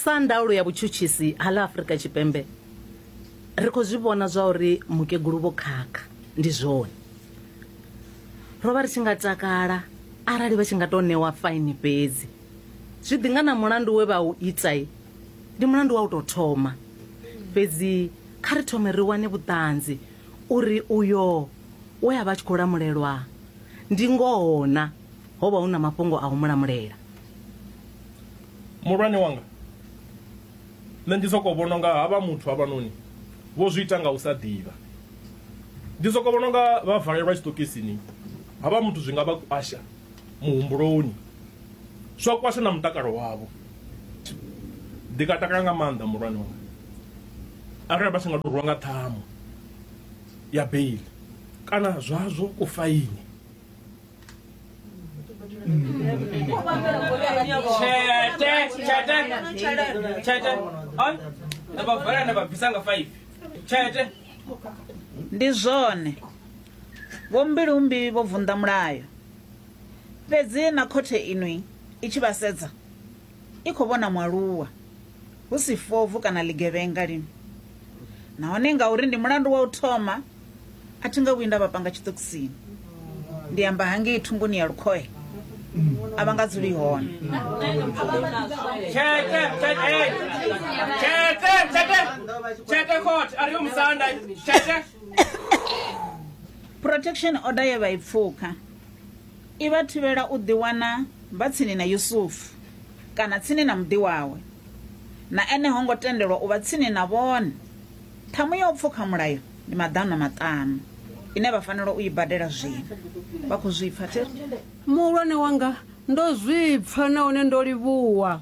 sa ndaulo ya vhutshutshisi ha ḽa afurika tshipembe ri khou zwi vhona zwa uri mukegulu vho khakha ndi zwone ro vha ri tshi nga takala arali vha tshi nga tou ṋewa faini fhedzi zwi ḓi nga na mulandu we vha u itai ndi mulandu wa u tou thoma fhedzi kha ri thome ri wane vhuṱanzi uri uyo we a vha a tshi khou lamulelwa ndi ngoho na Ho vha hu na mafhungo a u mu lamulela. Muhulwane wanga, nṋe ndi sokou vhona unga havha muthu havhanoni vho zwi ita nga u sa ḓivha. Ndi sokou vhona unga vha valelwa tshiṱokisini, havha muthu zwi nga vha kwasha muhumbuloni, zwa kwasha na mutakalo wavho. Ndi nga takala nga maanḓa muhulwane wanga arali vha tshi nga tou rwiwa nga ṱhamu ya beiḽi kana zwazwo kufaini. ndi zwone vho mbilumbi vho vunḓa mulayo fhedzi na khothe inwi i tshi vha sedza i khou vhona mualuwa hu si fobvu kana ḽigevhenga lini. Nahone ngauri ndi mulandu wa u thoma, a thi nga vhuyi nda vha panga tshiṱokisini. Ndi amba hangei thunguni ya lukhohe, a vha nga dzuli hone. Tshete, tshete, hey. Tshete, tshete, tshete khothe, a ri yo musanda, tshete. Protection order ye vha i pfuka. I vha thivhela u ḓiwana vha tsini na Yusufu kana tsini na muḓi wawe. Na ene ho ngo tendelwa u vha tsini na vhone. Ṱhamu ya u pfuka mulayo ndi maḓana maṱanu ine vha fanela u i badela zwino. Vha khou zwi pfa, Theri? Muhulwane wanga, ndo zwi pfa nahone ndo livhuwa.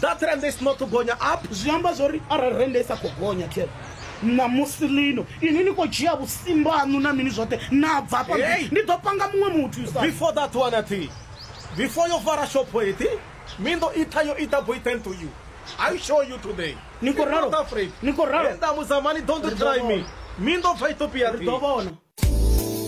That rand is not to gonya up zwi amba zwori arali rand i sa khou gonya tse ṋamusi lino ini ni khou dzhia vhusimbo haṋu na mini zwoṱhe na bva afha ndi ḓo panga muṅwe muthu sa before that one athi before yo vara shop eti mi ndo itha yo ita boy thank to you i show you today ni khou ralo ni khou ralo nda muzamani don't try me mi ndo bva ethiopia ri ḓo vhona